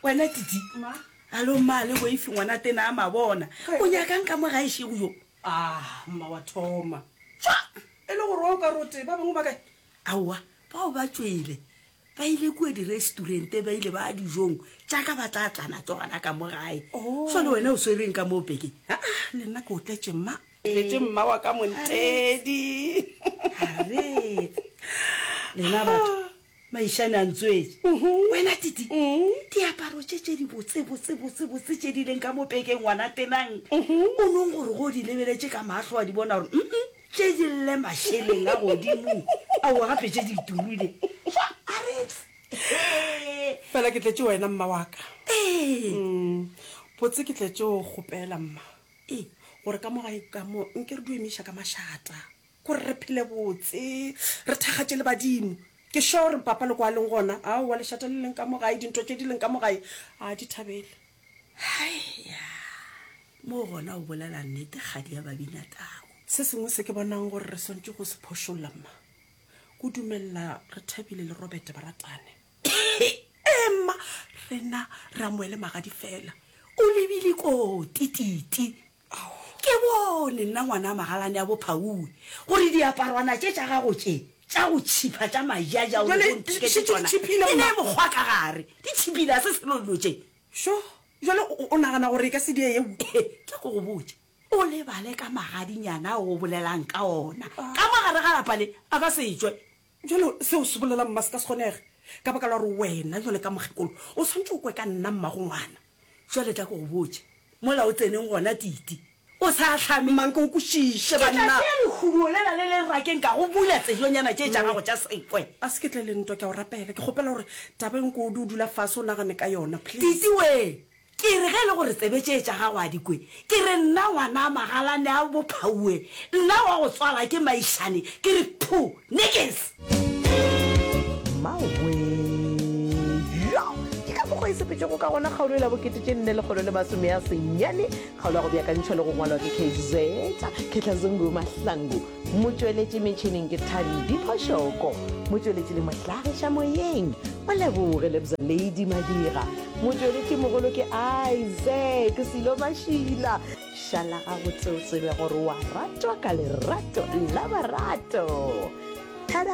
wena titi alo mma le waifi ngwana tena a mabona o nyakang ka mo ga ešego yo ah, mma wa thoma fa e le gore wa o ka rote ba bangwe ba kae aowa bao ba tswele ba ile kua diresturente ba ile ba dijong jaaka ba tla tlana tsogana ka mo gae so oh. le wena o swereng ka moo bekeng aa ah, le nna ke o tletse mma Letše mma wa ka Montedi. Aretse. Lena batho. Maishane a ntswetše. Wena Titi. Diaparo tše tše di botse botse botse botse tše di leng ka mo pekeng ngwana tenang. O nong gore go di lebeletše ka mahlo wa di bona gore mm tše di lle mašeleng a godimo. Aowa gape tše di turile. Fa Aretse. Fela ke tletše wena mma wa ka. Ee. Botse ke tletše o kgopela mma. E, gore ka mo gae ka mo nke re duemiša ka mašata gore re phele botse re thakgatše le badimo. Ke sure gore papa le kwa leng gona, aowa lešata le leng ka mo gae, dintho tše di leng ka mo gae a di thabele. Haeya! Mo gona o bolela nnete kgadi ya Babinatau. Se sengwe se ke bonang gore re swantše go se phošolla, mma, ke dumelela Rethabile le Robert ba ratane. Ema, rena Ramoele magadi fela, o lebile koo tititi. Ke bone nna ngwana magalane ya bophaue gore diaparwana tše tša gago tše tša go tšhipha tša majaja o rego ntheke tše tsona e ne mokgwa ka gare di tšhipile a se selo dilo tše šo jale o nagana gore e ka se die yeo ke go go botša o lebale ka magadinyana o bolelang ka ona ka mo gare ga lapa le a ka se tšwe Bjale, seo se bolela, mma, se ka se kgonege, ka baka la gore wena, jwale ka mokgekolo, o swanetše o kwe ka nna, mma, go ngwana. Jwale tla ke go botše. Mola o tseneng gona, Titi. O sa hlame. Mma, nke o kwešiše, banna. Ke tla tšea lehumo lela le le rakeng ka go bula tsejonyana tše tša gago tša sekwe. A se ke tle le ntwa, ke a go rapela. Ke kgopela gore taba e nko o dula fase o nagane ka yona, please. Titi, wee, Ke re, Ge e le gore tsebe tše tša gago a di kwe, ke re, nna ngwanaa Magalane a Bophauwe, nna wa go tswala ke Maišane, ke re, Phu! Niks! Mmawee! Yo! Ke ka mokgo e sepetšwego ka gona kgaolo e la bokete tše nne lekgolo le masome a senyane, kgaolo ya go beakantšhwa le go ngwalwa ke Kgz. Khetlazungu Mahlangu. Motšweletši metšhineng ke Thabi Diphošoko, motšweletši le mohlagiša moyeng o Leboge Lebza Lady Madira, motšweletši mogolo ke Isaac Silo Mašila. Šala gabotse o tsebe gore wa ratwa ka lerato la barato. Tada!